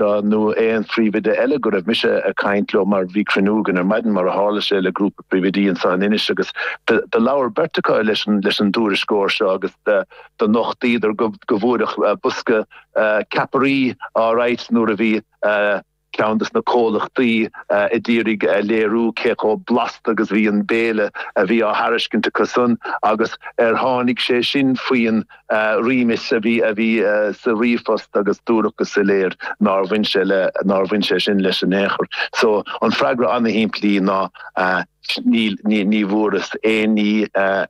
Anó aon phríomhoide eile go raibh mise ag caint leo mar bhí cruinniú againn ar maidin, mar a tharla sé, le grúpa príomhoidí anso in Inis agus do labhair beirt acu leis an dtuairisceoir seo agus do nochtaíodar go bhfuaireadh bosca ceapairí all right nuair a bhí ceann dos na comhlachtaí ag iarraidh léiriú cé chomh blasta agus bhí an béile a bhí á thairiscint acusan agus ar tháinig sé sin faoin réimeas a bhí sa ríomhphost agus dúradh go soiléir nár bhain sé le nár bhain sé sin leis in aon chor. So an freagra an-shimplí ná ní bhfuaireas aon ní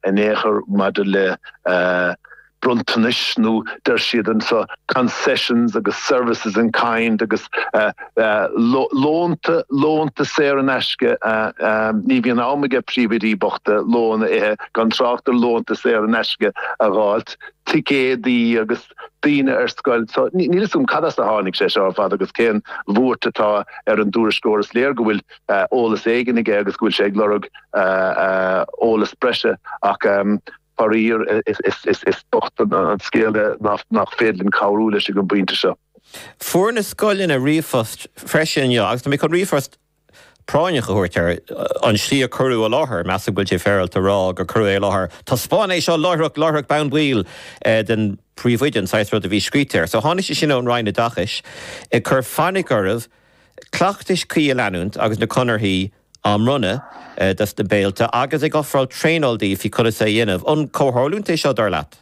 in aon chor maidir le bronntanais nó deir siad anseo concessions agus services in kind agus Lónta saor in aisce, ní bhíonn am ag príomhoidí bochta lón a ithe, gan trácht ar lónta saor in aisce a dh'fháilt. Ticéadaí agus daoine ar scoil. So níl a fhios agam cad as a tháinig sé seo ar fad agus cén bhuairt atá ar an dtuairisceoir. Is léir go bhfuil eolas éigin aige agus go bhfuil sé ag lorg eolas breise ach. Faraíor, is bocht an scéal é nach féidir linn cabhrú leis ag an bpointe seo. Fuair na scoileanna ríomhphost freisin inniu agus tá mé chun ríomhphost práinneach a thabhairt ar an slí a cuireadh i láthair. Measaim go bhfuil sé féaráilte a rá gur cuireadh é i láthair. Taispeáin é seo láithreach, láithreach bonn baill don phríomhoide, an saghas rud a bhí scríte air. So tháinig sé sin ón Roinn Oideachais ag cur fainic oraibh cleachtais chuí a leanúint agus na conarthaí a á mbronnadh dos na béiltí agus ag ofráil traenáil daoibh conas é a dhéanamh. An comhtharlúint é seo, dar leat?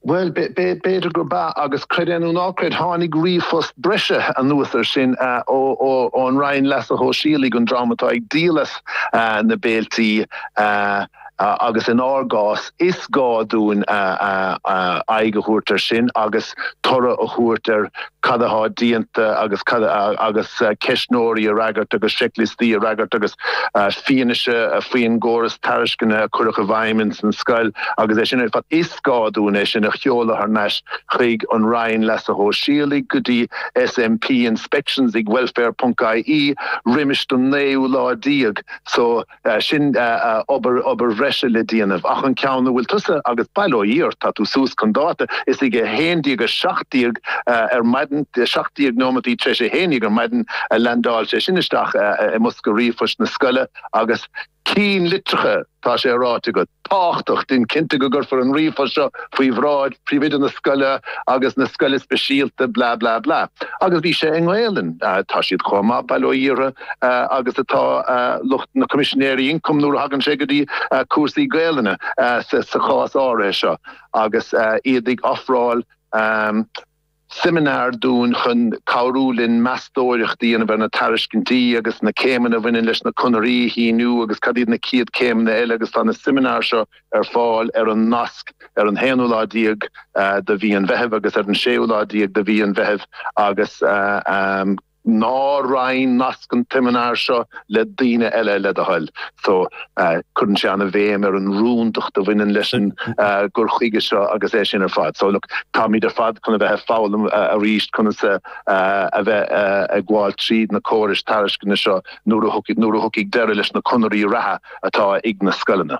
Bhuel, b'fhéidir gurb ea, agus creid é nó ná creid, tháinig ríomhphost breise anuas ar sin ón Roinn Leasa Shóisialaigh, an dream atá ag díol as na béiltí. agus in ár gcás, is gá dúinn aghaidh a thabhairt ar sin agus toradh a thabhairt ar cad atá déanta agus cad agus ceistneoirí a fhreagairt agus seicliostaí a fhreagairt agus fianaise faoin gcóras tairisceana a cuireadh i bhfeidhm ins an scoil agus é sin ar fad. Is gá dúinn é sin a sheoladh thar n-ais chuig an Roinn Leasa Shóisialaigh, go dtí SMP, inspections ag welfare.ie, roimis an naoú lá déag so. sin obair bhreise le déanamh ach an ceann a bhfuil tusa agus bail ó Dhia ort, tá tú suas chun dáta, is ag 11:17 ar maidin, 17 nóimintí tar éis a haon dhéag ar maidin, a leaindeáil sé sin isteach i mbosca ríomhphoist na scoile agus i gceannlitreacha, tá sé ráite agat. tábhachtach. Déan cinnte go gcuirfear an ríomhphost seo faoi bhráid Phríomhoide na scoile agus na scoile speisialta blah blah blah. Agus bhí sé i nGaelainn. Tá siad chomh maith, bail ó Dhia orthu, agus atá lucht na Coimisinéirí Ioncaim nuair a thagann sé go dtí cúrsaí Gaelainne, sa chás áirithe seo agus iad ag ofráil seimineár dúinn chun cabhrú linn meastóireacht a dhéanamh ar na tairiscintí agus na céimeanna a bhaineann leis na conarthaí a shíniú agus cad iad na chéad céimeanna eile agus tá na seimineár seo ar fáil ar an nasc ar an haonú lá déag de mhí an Mheithimh agus ar an séú lá déag de mhí an Mheithimh agus Ná roinn nasc an tseimineáir seo le daoine eile, le do thoil. So cuireann sé an-bhéim ar an rúndacht a bhaineann leis an gcur chuige seo agus é sin ar fad. So, look, táimid ar fad chun a bheith ag foghlaim arís conas a bheith ag gabháil tríd na córais tairisceana seo nuair a thiocfaidh deireadh leis na conarthaí reatha atá ag na scoileanna.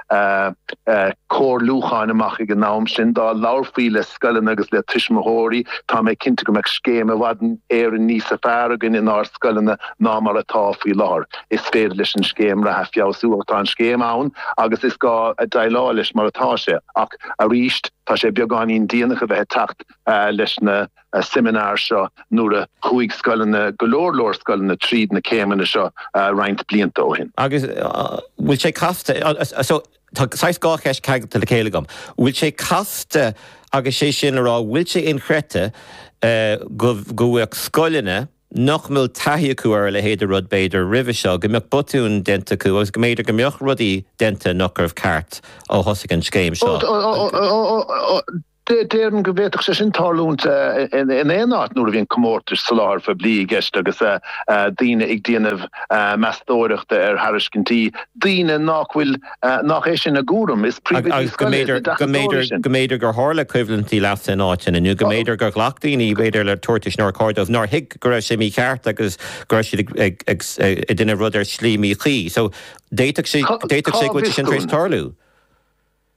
comhairliúcháin amach ag an am sin. Dá labharfaí le scoileanna agus le tuismitheoirí, tá mé cinnte go mbeadh scéim i bhfad Éireann níos fearr againn inár scoileanna ná mar atá faoi láthair. Is féidir leis an scéim reatha feabhsú ach tá an scéim ann agus is gá déileáil leis mar atá sé. Ach aríst, tá sé beagáinín déanach a bheith ag teacht leis na. seimineár seo nuair a chuaigh scoileanna, go leor leor scoileanna, tríd na céimeanna seo roinnt blianta ó shin. Agus an bhfuil sé casta, so tá saghas dhá cheist ceangailte le chéile agam, an bhfuil sé casta agus sé sin le rá an bhfuil sé inchreidte go bhféadfadh scoileanna nach bhfuil taithí acu ar a leithéid de rud b'fhéidir roimhe seo, go mbeadh botúin déanta acu agus go mb'fhéidir go mbeadh rudaí déanta nach raibh ceart ó thosaigh an scéim seo? Déarfainn go bhféadfadh sé sin tarlúint in éineáit nuair a bhíonn comórtais soláthair phoiblí i gceist agus daoine ag déanamh meastóireachta ar thairiscintí, daoine nach bhfuil, nach é sin a gcúram, agus go mb'fhéidir, go mb'fhéidir, go mb'fhéidir gur tharla coimhlintí leasa in áiteanna, nó go mb'fhéidir gur ghlac daoine, b'fhéidir, le tabhartais nár chóir dóibh, nár thuig go raibh sé mícheart agus go raibh siad ag déanamh rud ar shlí míchuí. So, d'fhéadfadh sé, d'fhéadfadh sé go bhfuil sé sin tar éis tarlú.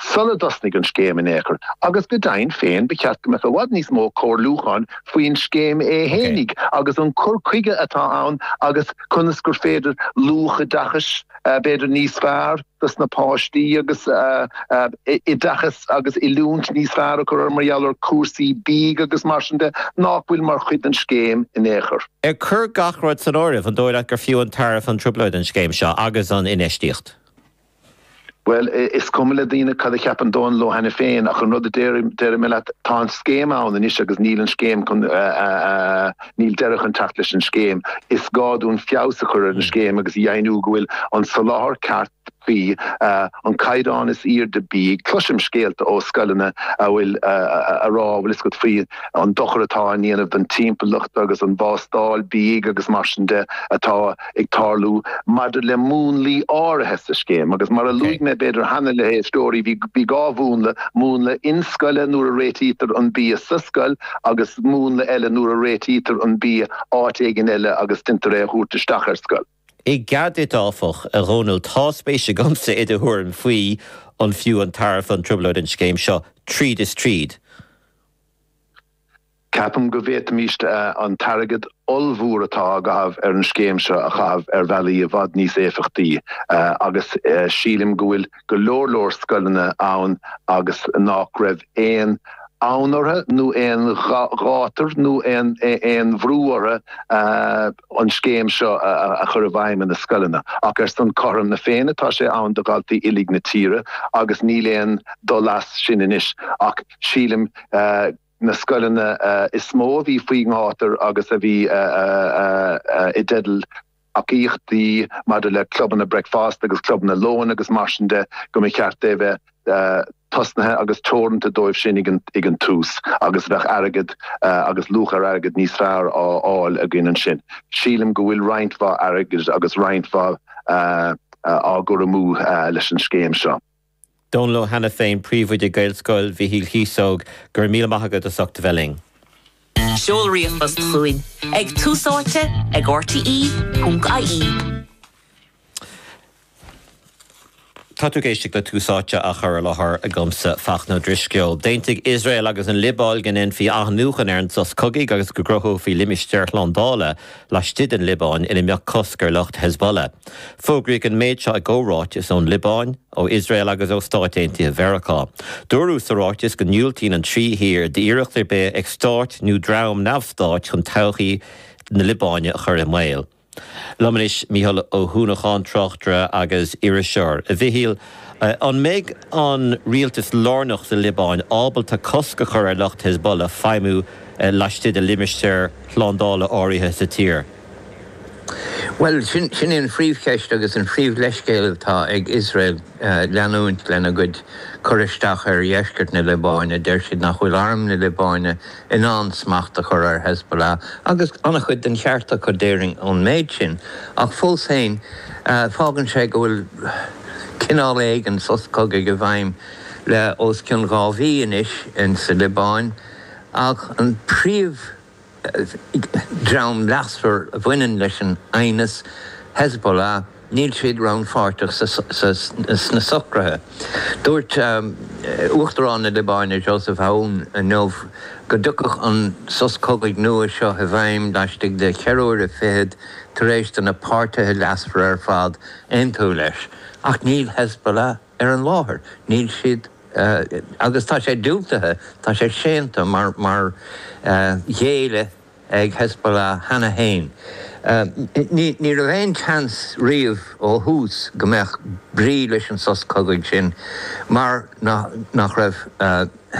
sula dtosnaigh an scéim in aon chor, agus go deimhin féin ba cheart go mbeadh i bhfad níos mó comhairliúcháin faoin scéim fhéinig agus an cur chuige atá ann agus conas gur féidir luach oideachais b'fhéidir níos fearr dos na páistí agus oideachas agus oiliúint níos fearr a chur orthu mar gheall ar chúrsaí bídh agus mar sin de nach bhfuil mar chuid den scéim in aon chor. Ag cur gach rud san áireamh, an dóigh leat gur fiú an tairbhe an trioblóid an scéim seo agus an infheistíocht? Bhuel, is cuma le daoine cad a cheapann domsa leo cheana féin, ach an rud a déarfaidh mé leat, tá an scéim ann anois agus níl an scéim chun, níl deireadh chun teacht leis an scéim. Is gá dúinn feabhas a chur ar an scéim agus a dheimhniú go bhfuil an soláthar ceart faoi an caighdeán is airde bídh. Cloisim scéalta ó scoileanna a bhfuil, a rá bhfuil fhios agat faoi an dochar atá á dhéanamh don timpeallacht agus an bhástáil bídh agus mar sin de atá, ag tarlú maidir le múnlaí áirithe sa scéim agus mar a luaigh mé b'fhéidir cheana leis na héisteoirí, bhí dhá mhúnla, múnla inscoile nuair a réitítear an bia sa scoil agus múnla eile nuair a réitítear an bia áit éigin eile agus deintear é a thabhairt isteach ar an scoil. I gcead duit áfach, a Dhónaill, tá spéis agamsa i do thuairim faoi an fiú an tairbhe an trioblóid an scéim seo tríd is tríd? Ceapaim go bhféadfaimis an t-airgead ollmhór atá á chaitheamh ar an scéim seo a chaitheamh ar bhealaí i bhfad níos éifeachtaí agus sílim go bhfuil go leor leor scoileanna ann agus nách raibh aon fhonn orthu nó aon ghátar nó aon bhrú orthu an scéim seo a chur i bhfeidhm ina scoileanna. Ach ar son cothrom na Féinne tá sé ann do dhaltaí uilig na tíre agus níl aon dul as sin anois ach sílim go na scoileanna is mó a bhí faoin ngátar agus a bhí i dteideal tacaíochtaí maidir le clubanna bricfeasta agus clubanna lóin agus mar sin de, go mba cheart é a bheith tosnaithe agus teoranta dóibh sin ag an tús agus bheadh airgead agus luach ar airgead níos fearr á fháil againn ansin. Sílim go bhfuil roinnt mhaith airgid agus roinnt mhaith á chur amú leis an scéim seo. Dónal Ó hAiniféin, Príomhoide Gaelscoil Mhichíl Chíosóg, Go raibh míle maith agat as ucht a bheith linn. Seol ríomhphost chugainn ag Tús Áite ag RTÉ.ie. Tá tú ag éisteacht le Tús Áite á chur i láthair agamsa, Fachtna Ó Drisceoil. D'aontaigh Iosrael agus an Liobáin go ndéanfaí athnuachan ar an sos cogaidh agus go gcruthófaí limistéar slándála laistigh den Liobáin ina mbeadh cosc ar lucht Hezbollah. Fógraíodh an méid seo i gcomhráiteas ón Liobáin, ó Iosrael agus ó Stáit Aontaithe Mheiriceá. Dúradh sa ráiteas go ndiúltaíonn an trí thír d'iarracht ar bith ag stát nó dream neamh-stáit chun todhchaí na Liobáine a chur i mbaol. Liom anois Mícheál Ó hUanacháin, tráchtaire agus iriseoir. A Mhichíl, An mbeidh an rialtas lárnach sa Liobáin ábalta cosc a chur ar lucht Hezbollah feidhmiú laistigh de limistéar slándála áirithe sa tír? Bhuel, sin í an phríomhcheist agus an príomhleithscéal atá ag Iosrael leanúint lena gcuid cur isteach ar dheisceart na Liobáine. Deir siad nach bhfuil arm na Liobáine in ann smacht a chur ar Hezbollah agus an-chuid den cheart acu déarfainn ón méid sin, ach fós féin, fágann sé go bhfuil cineál éigin sos cogaidh i bhfeidhm le os cionn dhá mhí anois sa Liobáin, ach an príomhdhream leasmhar a bhaineann leis an aighneas, Hezbollah, níl siad rannpháirteach sna socruithe. Dúirt Uachtarán na Liobáine Joseph Aoun inniu go dtiocfadh an sos cogaidh nua seo i bhfeidhm laistigh de cheithre huaire fichead tar éis do na páirtithe leasmhara ar fad aontú leis, ach níl Hezbollah ar an láthair, níl siad agus tá sé diúltaithe, tá sé séanta mar mar ghéilleadh. ag Hezbollah cheana féin. Ní raibh aon tseans riamh ó thús go mbeadh brí leis an sos cogaidh sin mar nach raibh.